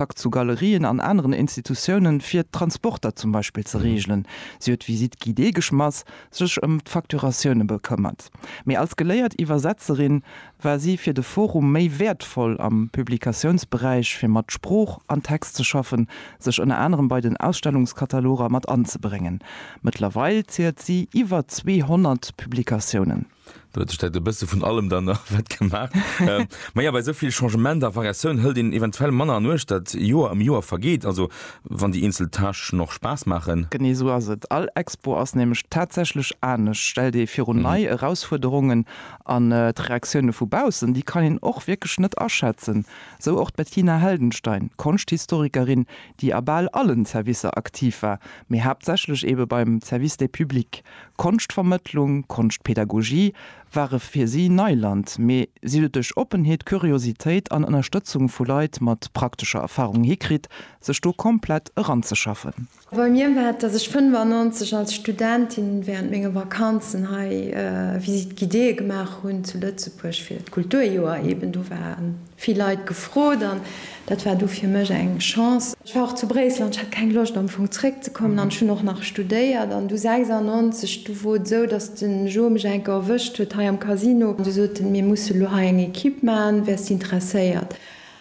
Kontakt zu Galerien an aneren Institutiounen, fir d'Transporter zum Beispill ze reegelen. Si huet d'Visite guidée geschmass, sech ëm d'Facturatioune bekëmmert. Mee als geléiert Iwwersetzerin war si fir de Forum méi wäertvoll am Publikatiounsberäich, fir mat Sprooch an Text ze schaffen, sech ënner anerem bei den Ausstellungskataloger mat anzebréngen. Mëttlerweil zielt si iwwer 200 Publikatiounen. Do huet sech dat e bësse vun allem dann nach wett gemaach. ähm, ma ja, bei so vill Changement a Variatioun hëlt een eventuell manner an Uecht, dat Joer ëm Joer vergeet, also wann déi eenzel Tâche noch Spaass maachen. Genee esou ass et. All Expo ass nämlech tatsächlech anescht, stellt ee virun mhm. nei Erausfuerderungen an äh, d'Reaktioune vu baussen, déi kann een och wierklech net aschätzen. Sou och d'Bettina Heldenstein, Konschthistorikerin, déi a bal allen Servicer aktiv war, mee haaptsächlech ebe beim Service des publics. Konschtvermëttlung, Konschtpedagogie ware fir si Neiland, mee si huet et duerch Oppenheet, Kuriositéit an Ënnerstëtzung vu Leit mat praktescher Erfarung hikritt, sech do komplett eranzeschaffen. Bei mir war et, dass ech 95 als Studentin während menge Vakanzen hei Visite guidée gemaach hunn zu Lëtzebuerg fir d'Kulturjoer eben. Do war. Vill Leit gefrot an dat war du fir mech eng Chance. Ech war och zu Bréissel an ech hat keng Loscht am Fong zréck ze kommen an ech hunn och nach studéiert an du 96 du wor et esou dass de Joe mech eng Kéier erwëscht huet hei am Casino an du sot en mir musse lo hei eng Equipe man wäers de interesséiert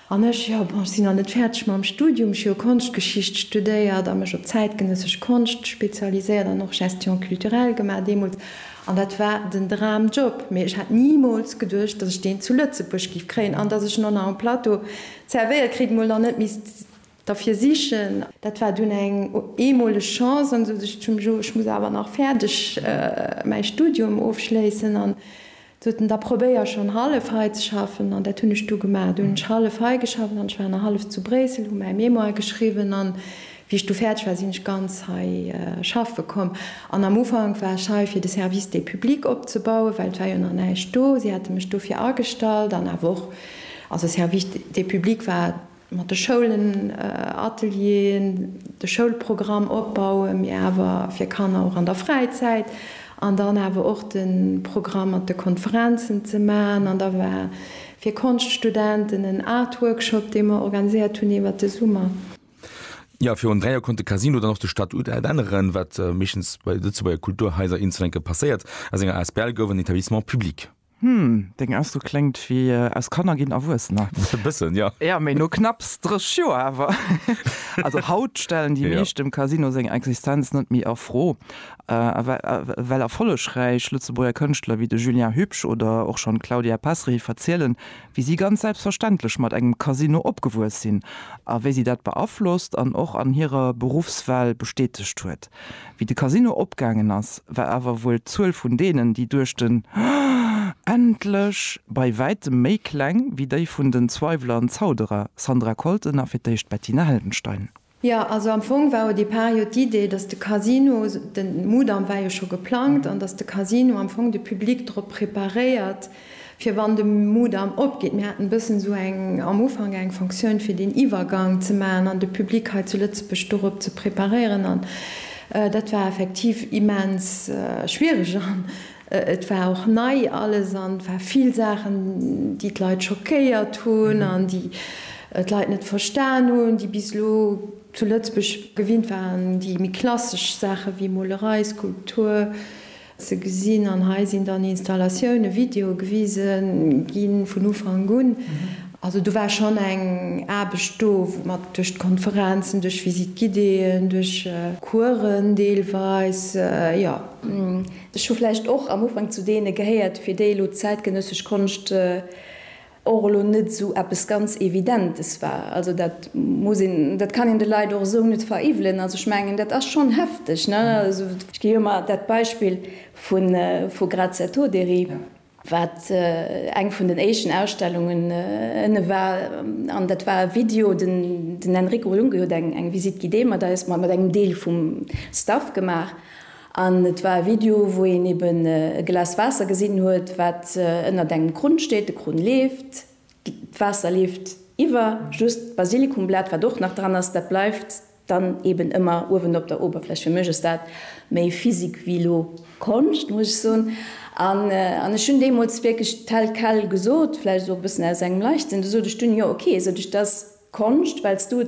an ech jo bon ech sinn nach net fäerdeg mam Studium ech hu jo Konschtgeschicht studéiert a mech op zäitgenëssesch Konscht spezialiséiert an och Gestion culturelle gemaach deemools An dat war den Dramjob, mee ech hat nimools geduecht, datt ech deen zu Lëtzebuerg giff kréien an datt ech en och nach um Plateau zervéiert kritt, mol nach net misst derfir sichen. Dat war dunn eng eemoleg Chance an esou sech zum Jo, ech muss awer nach fäerdeg mäi Studium ofschléissen an soten, da probéier schonn hallef hei ze schaffen an dat hunn ech du gemaach. Du hunn ech hallef hei geschafft an ech war nach hallef zu Bréissel, hu mäi Mémoire geschriwwen an Wéi ech du fäerdeg war, sinn ech ganz hei schaffe komm. An am Ufank war ech hei, fir de Service des publics opzebauen, well et war jo nach näischt do. Si hate mech dofir agestallt an awer och, also Service des publics war mat de Schoulen, Atelieren, de Schoulprogramm opbauen, mee awer fir Kanner och an der Fräizäit an dann awer och de Programm mat de Konferenzen ze maachen. An da war fir Konschtstudenten en Art-Workshop, dee mer organiséiert hunn iwwert de Summer. Ja, virun dräi Joer konnt de Casino dann och de Statut änneren, wat meeschtens bei Lëtzebuerger Kulturhaiser eens enke passéiert. Aus enger asbl gouf en Etablissement public. Hm, deng Ausdro kléngt wéi aus Kanner ginn Erwuessener. E bëssen, jo. Ja, mee no knapps 30 Joer awer. Also haut stellen déi meescht dem Casino seng Existenz net méi a Fro, well erfollegräich Lëtzebuerger Kënschtler wéi de Julien Hübsch oder och schonn d'Claudia Pesri verzielen, wéi si ganz selbstverständlech mat engem Casino opgewuess sinn a wéi si dat beaflosst an och an hirer Beruffswahl bestätegt huet. Wéi de Casino opgaangen ass, war awer wuel d'Zuel vun deenen, déi duerch den Endlech! bei wäitem méi kleng wéi déi vun den Zweiwler an Zauderer, Sandra Colton a fir d'éischt Bettina Heldenstein. Jo, also am Fong war o départ jo d'Idee, dass de Casino, den Mudam war jo scho geplangt, an dass de Casino am Fong de Public drop preparéiert, fir wann de Mudam opgeet. Mir haten e bëssen esou eng, am Ufank eng Fonctioun, fir deen Iwwergang ze maachen an de Public hei zu Lëtzebuerg dorop ze preparéieren. An dat war effektiv immens schwierig. Et war och nei alles an et war vill Saachen, déi d'Leit schockéiert hunn an déi d'Leit net verstan hunn, déi bis elo zu Lëtzebuerg gewinnt waren, déi méi klassesch Saache wéi Molerei, Skulptur ze gesinn. An hei sinn dann Installatiounen, Videoe gewise gi vun Ufank un. Also do war schonn eng Aarbecht do, mat duerch d'Konferenzen, duerch Visite-guidéeën, duerch Coursen deelweis, jo. Ech hu vläicht och am Ufank zu deene gehéiert, fir déi elo d'zäitgenëssesch Konscht och elo net esou eppes ganz Evidentes war. Also dat muss een, dat kann een de Leit och esou net veriwwelen. Also ech mengen, dat ass schonn hefteg. Ech gi jo emmer dat Beispill vu Grazetto, Deri. wat eng vun den éischten Ausstellungen ënne war, an dat war e Video, den Enrico Lunghi huet eng Visite guidée mat eis, mat engem Deel vum Staff gemaach, an et war e Video wou een eben e Glas Waasser gesinn huet, wat ënnert engem Krunn steet, de Krunn leeft, d'Waasser leeft iwwer, just d'Basilikumblat wat och nach dran ass, dat bleift. Dann eben ëmmer uewen op der Oberfläch. Fir mech ass dat méi Physik wéi elo Konscht, muss ech soen. An ech hunn deemools wierklech tel quel gesot, vläicht och e bëssen aus engem Leichtsinn, du sot ech dunn, jo ok, sot ech, 't ass Konscht, well s du et